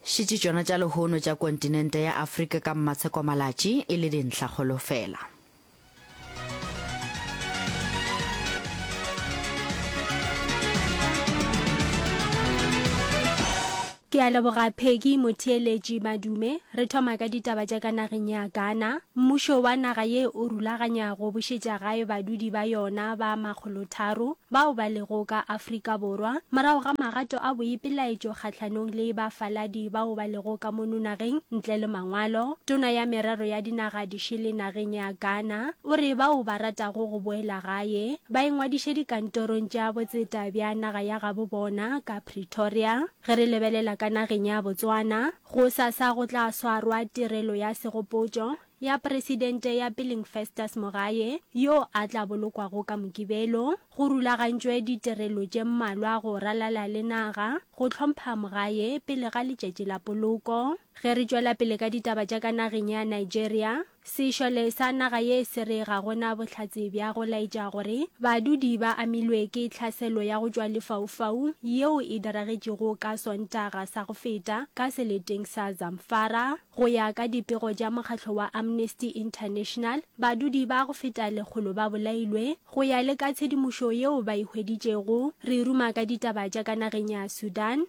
Šetše tšona tša lehono tša kontinente ya Afrika ka mmatshekwa-malatši e le dintlhakgolo fela. Ke a leboga Peggy Motheeletši Madume. Re thoma ka ditaba tša ka nageng ya Ghana. Mmušo wa naga ye o rulaganya go bušetša gae badudi ba yona ba makgolotharo bao ba lego ka Afrika Borwa morago ga magato a boipelaetšo kgahlanong le bafaladi bao ba lego ka mono nageng ntle le mangwalo. Tona ya Merero ya Dinaga di Šele nageng ya Ghana o re bao ba ratago go boela gae ba ingwadiše dikantorong tša botseta bja naga ya gabo bona ka Pretoria. Ge re lebelela ka nageng ya Botswana, Gosasa go tla swarwa tirelo ya segopotšo ya Presidente ya Peleng Festus Mogae yo a tla bolokwago ka Mokibelo. Go rulagantšwe ditirelo tše mmalwa go ralala le naga go hlompha Mogae pele ga letšatši la poloko. Ge re tšwela pele ka ditaba tša ka nageng ya Nigeria, Sešole sa naga ye se re ga go na bohlatse bja go laetša gore badudi ba amilwe ke tlhaselo ya go tšwa lefaufau yeo e diragetšego ka Sontaga sa go feta ka seleteng sa Zamfara. Go ya ka dipego tša mokgatlo wa Amnesty International, badudi ba go feta lekgolo ba bolailwe. Go ya le ka tshedimošo yeo ba e hweditšego, re e ruma ka ditaba tša ka nageng ya Sudan,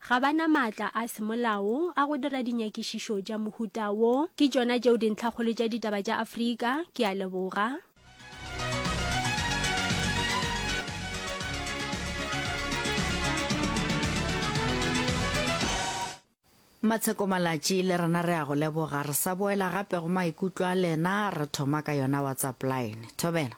Ga ba na maatla a semolao a go dira dinyakišišo tša mohuta wo. Ke tšona tšeo dintlhakgolo tša ditaba tša Afrika. Ke a leboga. Matsheko Malatši le rena re a go leboga. Re sa boela gape go maikutlo a lena, re thoma ka yona WhatsApp line. Thobela.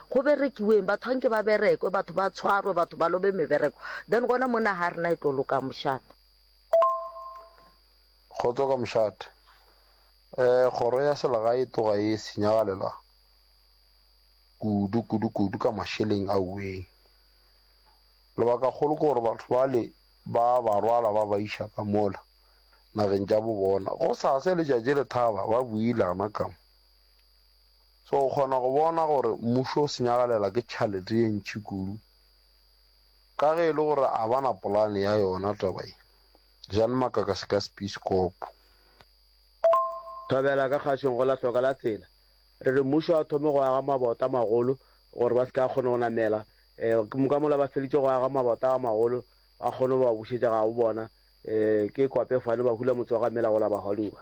go berekiweng, batho ga nke ba berekwe, batho ba tshwarwe, batho ba lobe mebereko, then gona mo naga ya rena e tlo loka mošate. Kgotso ka mošate. Um kgoro ya selegae e tloga e senyagalela kudu kudu kudu ka mašeleng a uweng. Lebaka kgolo ke gore batho bale ba ba rwala ba ba iša ka mola nageng tša bo bona, go sase letšatši le thaba ba builana ka mo. So o kgona go bona gore mmušo o senyagalela ke tšhalete ye ntši kudu. Ka ge e le gore a ba na polane ya yona taba ye, jang makaka se ka sepiskopo. Thobela ka kgašeng go la hloka la tsela. Re re mmušo a thome go aga mabota a magolo gore ba se ke a kgona go namela. Ke ka mola ba feditše go aga mabota a magolo ba kgone go ba bušetša gabo bona. Ke kwape fane ba hula motse wa ga Mela go la Bahaluba.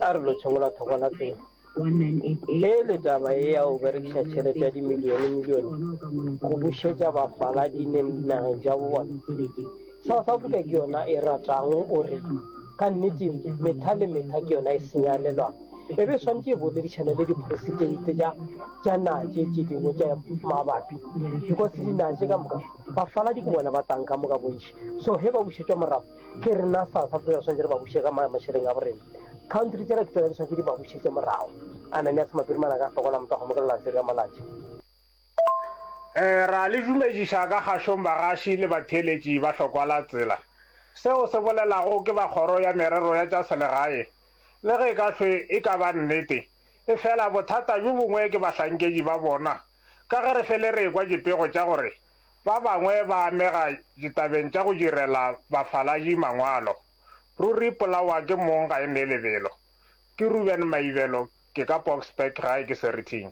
A re lo tšhomola thoko la tsela. Ge e le taba ye ya go berekiša tšhelete ya dimilionemilione go bušetša bafaladi neng dinageng tša bo bona, South Africa ke yona e ratang o re ka nnete metha le metha ke yona e senyalelwago. E be e swanetše e boledišane le diporesiteite tša tša naga tše tše dingwe tša mabapi because dinaga tše ka moka bafaladi ke bona ba tlang ka moka bontši. So ge ba bušetšwa morago, ke rena fa fa pele swantse re ba bushe ka ma mashereng a borena country tsela ke tsela swantse di ba bushe tse morao ana ne a tsama pele mana ka fokola mpa go mokela tsela malaje eh ra le dumedisa ka gashong bagashi le batheletši ba hlokwala tsela seo se bolelago ke ba kgoro ya merero ya tša selegae le ge ka hlwe e ka ba nnete e fela bothata bjo bongwe ke bahlankedi ba bona ka ge re fele re ekwa dipego tša gore Ba bangwe ba amega ditabeng tša go direla bafaladi mangwalo. Ruri polawa ke mong ga e nee lebelo. Ke Reuben Maibelo, ke ka Boksburg gae ke Seriting.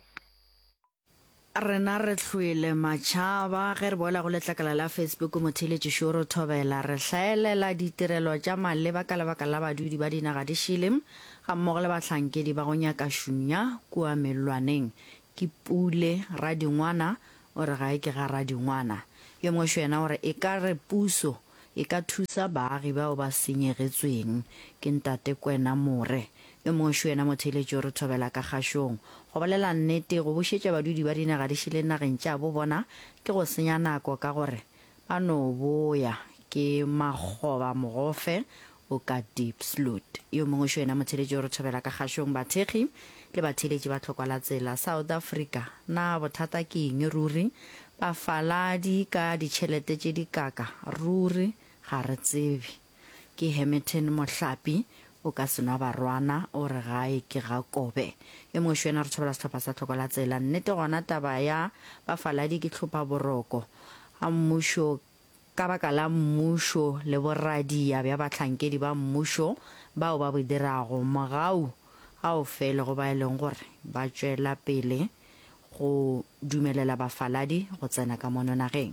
Rena re hlwele matšhaba ge re boela go letlakala la Facebook Motheeletši Šoro Thobela re hlaelela ditirelo tša maleba ka lebaka la badudi ba dinaga di šele gammogo le bahlankedi ba go nyaka šunya kua mellwaneng Ke Pule, Radingwana o re ga e ke ga Radingwana. Yo mongwe xo yena o re e ka re puso e ka thusa baagi bao ba senyegetsweng ke Ntate Kwena More. Yo mongwe xo yena motheeletši o re thobela ka kgašong. Go bolela nnete, go bušetša badudi ba dinaga di šele nageng tša bo bona ke go senya nako ka gore Ba no boya ke Makgoba Mogofe, o ka Diepsloot. Yo mongwe šo yena motheeletši o re thobela ka kgašong bathekgi le batheeletši ba tlhokwa la tsela South Africa. Na bothata ke eng ruri? Bafaladi ka ditšhelete tše dikaka ruri? Ga re tsebe. Ke Hermitin Mohlapi, o ka se nwa barwana, o re gae ke ga Kobe. E mošo yena re tšhabela sehlopha sa tlhoko la tsela. Nnete gona taba ya bafaladi ke tlhopha boroko. A mmušo ka baka la mmušo le boradia bja bahlankedi ba mmušo bao ba bo dirago, mogau ga o fele go ba e leng gore ba tšwela pele go dumelela bafaladi go tsena ka mono nageng,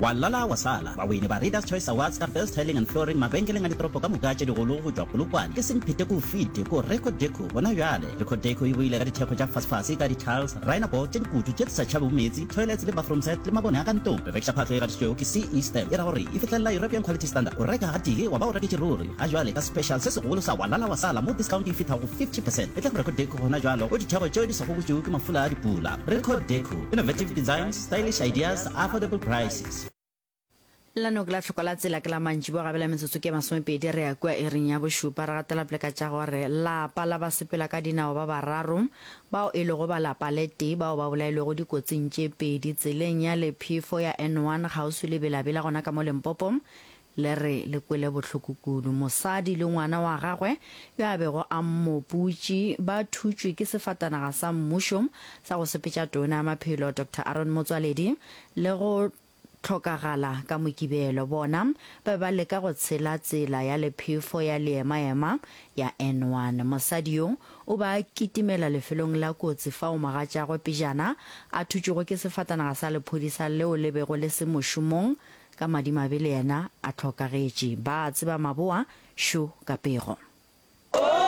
Wa lala wa sala. Bawini ba Readers Choice Awards ka Best Tiling and Flooring mabenkeleng a ditoropo ka moka tše digolo go tšwa Polokwane ke semphete ke o fete ko Reco Deco gona bjale. Reco Deco e boile ka dithekgo tša fasefase ka di-tiles, rhino board tše dikutu tše di sa tšhabego meetse, toilets le bathroom set le mabone a ka ntlong. Re rekiša phahlo e gatišitšwego ke CE stamp e ra gore e fihlelela European Quality Standard. O reka gatee wa ba o reketše ruri. Ga jwale ka special se segolo sa Wa lala wa sala mo discount e fithago 50 percent e tla go Reco Deco gona bjalo go dithekgo tšeo di sa gobotšwego ke mafula a dipula. Reco Deco, Innovative Designs, Stylish ideas, affordable prices. La noke la hloko la tsela ke la mantšibo a gabela metsotso ke masomepedi re ya kua iring ya bošupa re gatela pele ka tša gore lapa la ba sepela ka dinao ba bararo bao e lego ba lapa le tee bao ba bolailwego dikotsing tše pedi tseleng ya lephefo ya N1 kgauswi le Bela-Bela gona ka mo Limpopo Le re le kwele bohloko kudu. Mosadi le ngwana wa gagwe yo a bego a mmoputši ba thutšwe ke sefatanaga sa mmušo sa go sepetša Tona ya Maphelo Doctor Aaron Motsoaledi le go hlokagala ka Mokibelo. Bona ba be ba leka go tshela tsela ya lephefo ya leemaema ya N1. Mosadi yo o be a kitimela lefelong la kotsi fao mogatšagwe pejana a thutšwego ke sefatanaga sa lephodisa leo le bego le se mošomong Ka madimabe le yena a hlokagetše. Ba a tseba maboa, šo, ka pego.